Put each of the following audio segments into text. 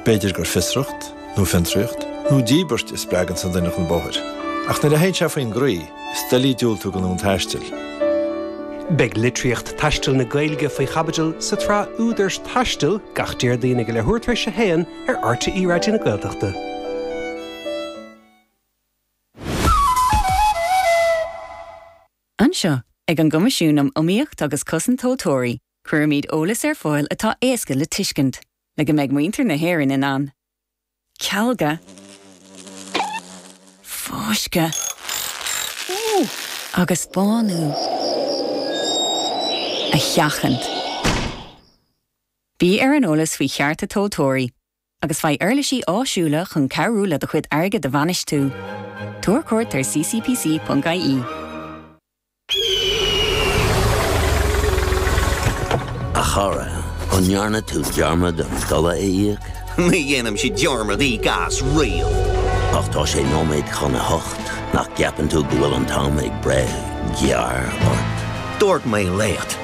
B'fhéidir gur fiosracht, nó fiontraíocht, nó díbirt a spreagann sa duine chun bóthair, ach nuair a théann sé faoin gcroí, is doiligh diúltú don fhonn taistil. Beidh litríocht taistil na Gaeilge faoi chaibidil sa tsraith Údair Taistil gach Déardaoin ag a leathuair tar éis a haon ar RTÉ Raidió na Gaeltachta. Anseo, ag an gCoimisiún um Iomaíocht agus Cosaint Tomhaltóirí, Cuirimid eolas ar fáil atá éasca le tuiscint, le go mbeidh muintir na hÉireann in ann cealgadh, fioscaireacht agus bánú a sheachaint. Bí ar an eolas faoi chearta tomhaltóirí agus faigh uirlisí áisiúla chun cabhrú le do chuid airgid a bhainistiú. Tabhair cuairt ar ccpc.ie. A chara, an ndearna tú dearmad an ceadúnas a íoc? Ní dhéanaimse dearmad íoc as riamh! Ach tá sé nóiméad chun a hocht, nach gceapann tú go bhfuil an t-am ag breith gearr ort? Dúirt mé leat!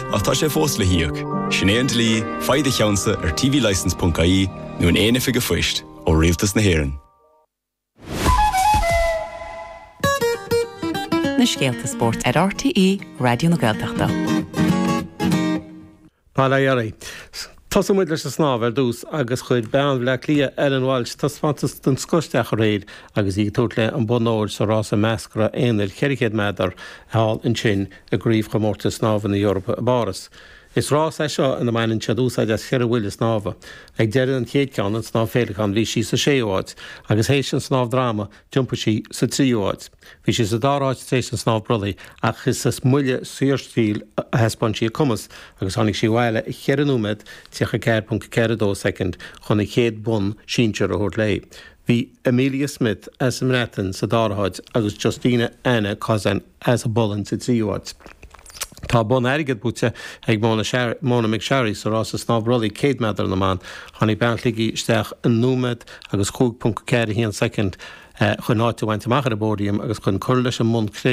Ach tá sé fós le híoc. Sin é an dlí, faigh do cheannsa ar tvlicense.ie nó in aon oifig an phoist ó Rialtas na hÉireann. Na scéalta spóirt ar RTÉ Raidió na Gaeltachta. Tosóidh muid leis an snámh ar dtús agus chuir bean Bhleá Cliath, Ellen Walsh, taispeántas den scoth isteach aréir agus í ag tabhairt léi an bonn óir sa rása meascra aonair 400 meadar thall ansin i gCraobhchomórtas Snámha na hEorpa i bPáras. Is rás é seo ina mbaineann siad úsáid as cheithre bhuille snámha. Ag deireadh an chéad ceann, an snámh féileacáin, bhí sí sa séú háit agus théis an snámh droma, d'iompaigh sí sa tríú háit. Bhí sí sa dara háit tar éis an snámh brollaigh ach is sa mbuille saorstíle a thaispeáin sí a cumas agus tháinig sí abhaile i 4 nóiméad 34.42 soicind chun an chéad bonn sinsear a thabhairt léi. Bhí Amelia Smith as an mBreatain sa dara háit agus Justina Anna Kozan as an bPolainn sa tríú háit. Tá bonn airgid buaite ag Mona McSharry sa rása snámh brollaigh 100 meadar na mban. Tháinig bean Shligigh isteach i nóiméad agus 5.41 soicind chun áit a bhaint amach ar an bpóidiam agus chun cur leis an mbonn cré